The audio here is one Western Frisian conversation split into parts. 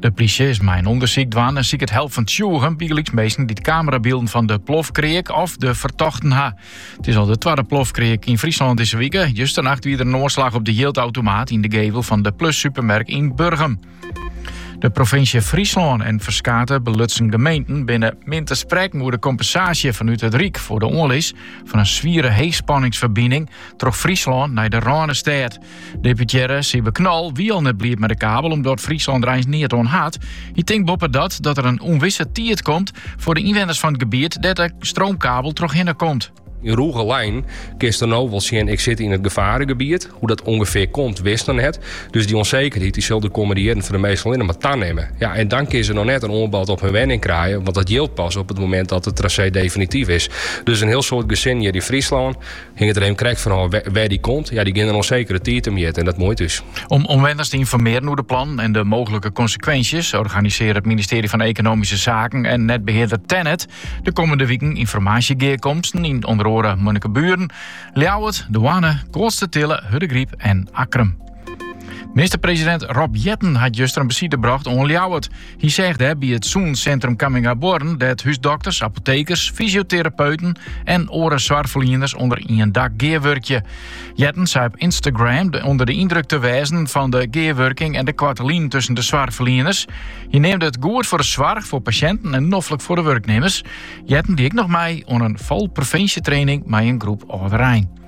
De plysje is mei in ûndersyk dwaan en siket help fan tsjûgen, bygelyks minsken dy't kamerabylden fan de plofkreak of de fertochten ha. It is al de twadde plofkreak yn Fryslân dizze wike. Justernacht wie der in oanslach op de jildautomaat yn de gevel fan de Plus-supermerk yn Burgum. De provinsje Fryslân en ferskate belutsen gemeenten binne min te sprekken oer de kompensaasje fanút it Ryk foar de oanlis fan in swiere heechspanningsferbining troch Fryslân nei de Rânestêd. Deputearre Sijbe Knol wie al net bliid mei de kabel omdat Fryslân der eins neat oan hat. Hy tinkt boppedat dat der in ûnwisse tiid komt foar de ynwenners fan it gebiet dêr't de stroomkabel trochhinne komt. Yn rûge linen kinst dêr no wol sjen ik sit yn it gefaregebiet. Hoe't dat ûngefear komt witst noch net. Dus dy ûnsekerheid dy sil de kommende jierren foar de minsken allinnich mar tanimme. Ja, en dan kinne se noch net in oanbod op hun wenning krije, want dat jildt pas op it momint dat it trasee definityf is. Dus in hiel soad gesinnen hjir yn Fryslân, Hinget der mar krekt fan ôf wêr't dy komt. Ja dy geane in ûnsekere tiid temjitte en dat muoit ús. Om omwenners te ynformearjen oer de plannen en de mooglike konsekwinsjes, organisearre it ministearje fan Ekonomyske Saken en netbehearder Tennet de kommende wiken ynformaasjegearkomsten yn ûnder oare Munnikeburen, Ljouwert, Damwâld, Koatstertille, Hurdegryp en Akkrum. Minister-presidint Rob Jetten hat juster in besite brocht oan Ljouwert. Hy seach dêr by it sûnsintrum Camminghabuorren dêr't húsdokters, apotekers, fysioterapeuten en oare soarchferlieners ûnder ien dak gearwurkje. Jetten sei op Instagram ûnder de yndruk te wêzen fan de gearwurking en de koarte linen tusken de soarchferlieners. Hy neamde it goed foar de soarch, foar pasjinten en noflik foar de wurknimmers. Jetten die ek noch mei oan in falprevinsjetraining mei in groep âlderein.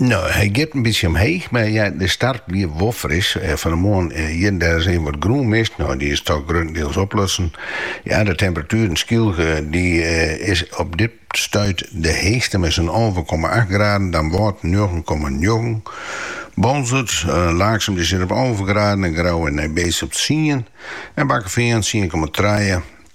No, hy giet in bytsje omheech, mar ja, de start wie wol fris. Fan 'e moarn hjir en dêr syn wat grûnmis, no dy is dochs gruttendiels oplutsen. Ja, de temperatueren, Skylge dy is op dit stuit de heechste mei sa'n alve komma acht graden, Damwâld njoggen komma njoggen, Boalsert, Laaksum dy sit op alve graden en Grou en Nij Beets op tsien en Bakkefean tsien komma trije.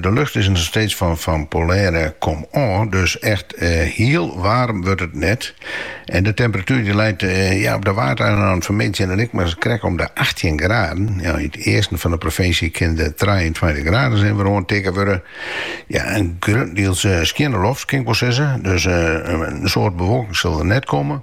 De lucht is noch steeds fan polêre komôf, dus echt hiel waarm wurdt it net. En de temperatuer dy leit ja op de Waadeilannen fan 'e middei dan ek mar krekt om de achttjin graden. Yn it easten fan de provinsje kin de trijeentweintich graden ris wer oantikke wurde. Ja, in grutdiels skjinne loft kin ik wol sizze, dus in soad bewolking sil der net komme.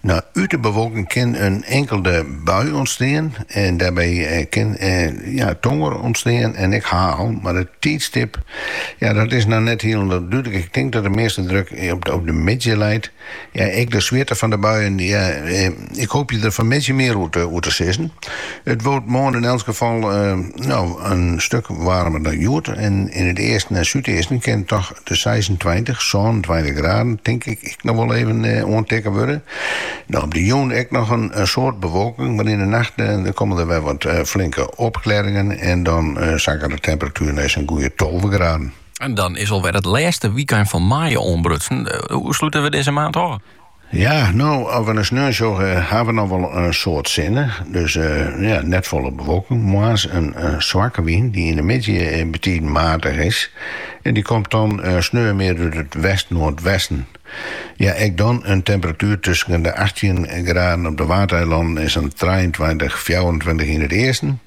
No, út de bewolking kin in inkelde bui ûntstean en dêrby kin ja, tonger ûntstean en ek heil. Mar it tiidstip, ja, dat is noch net hielendal dúdlik. Ik tink dat de measte druk op de middei leit. Ja, ek de swierte fan de buien, ja, ik hoopje der fanmiddei mear oer te sizzen. It wurdt moarn yn elts gefal noch in stuk waarmer dan hjoed en yn it easten en súdeasten kin it dochs de seisentweintich, sânentweintich graden tink ek noch wol even oantikken wurde. Dan op de jûn ek noch in soad bewolking, mar yn de nacht komme der wer wat flinke opklearringen en dan sakket de temperatuer nei sa'n goeie tolve graden. Dan is alwer it lêste wykein fan maaie oanbrutsen. Hoe slute we dizze maand ôf? Ja, no, as we nei sneon sjogge, ha we noch wol in soad sinne. Dus ja, net folle bewolking. Moarns in swakke wyn dy't yn de middei betiden maatich is. En dy komt dan sneon mear út it west-noardwesten. Ja, ek dan in temperatuer tusken de achttjin graden op de Waadeilannen en sa'n trijeentweintich, fjouwerentweintich yn it easten.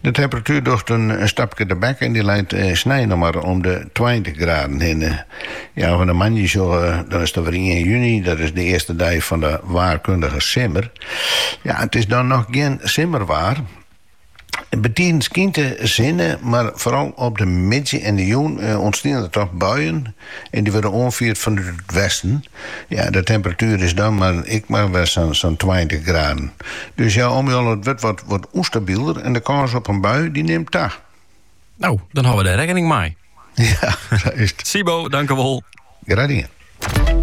De temperatuer docht in stapke tebek en dy leit snein noch mar om de tweintich graden hinne. Ja, as we nei moandei sjogge dan is it alwer ien juny, dat is de earste dei fan de waarkundige simmer. Ja, it is dan noch gjin simmerwaar. Betiden skynt de sinne, mar foaral op de middei en de jûn ûntsteane der toch buien. En dy wurde oanfierd fanút it westen. Ja, de temperatuer is dan ek mar wer sa'n tweintich graden. Dus ja, Jolle, it wurdt wat ûnstabieler en de kâns op in bui dy nimt ta. No, dan hâlde we dêr rekkening mei. Ja, sa is it. Sybo, dankewol. Graach dien.